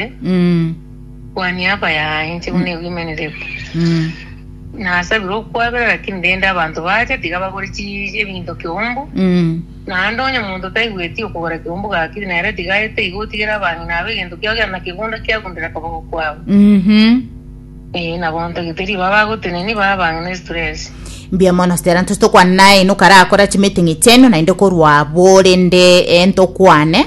ase kwania abayaye, inche buna egwimaneretie. Nasabire okwabera, lakini rende abanto baacha tiga bagore chi- ebinto kiumbu, naende onye omonto taigweti okogora kiumbu gaki, nere tiga aete iga otigere abang'ina abo egento kiao gionsi na kegunda kiagundere akaboko kwabo. Ee, na bontogete riba bagoteneni bae abang'ina estress. Mbuya mono stera ntose tokwane naye ino karakora chimeeting chiaino naende korwa abore nde eh, ntokwane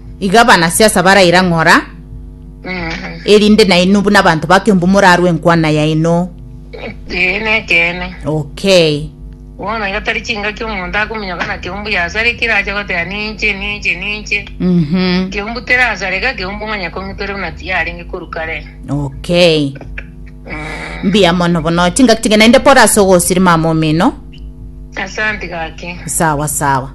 Iga abanasiasa baraira ng'ora, erinde nainwe buna abanto ba Kiambu morarwe enkwana yaino. Ee, nekeene. Okay. Bono iga tari chingaki omonto akominyoka na Kiambu yasarekire ache goteba ninche ninche ninche. Mhm. Kiambu terasareka, Kiambu onye kong'itore buna tiyarenge korwa kare. Okay. Mbuya mono bono. Chingaki chingaki naende pole ase ogosiri mama omino. Asante gaki. Sawa sawa.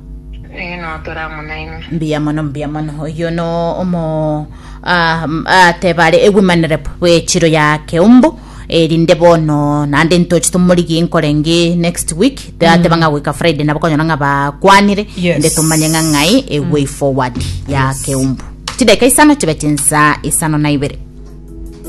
Eh, no tora amo naino. Mbuya mono mbuya mono. Oyo no omo ah, m- ah, tebare ewimanire bwechiro ya keumbu erinde bono naende ntoche tomorigie nkorenge next week tateba ng'a goika friday nabo konyora ng'a bakwanire Yes. inde tomanye ng'a ng'ai a way forward ya keumbu chideka isano chibe chinsa isano na ibere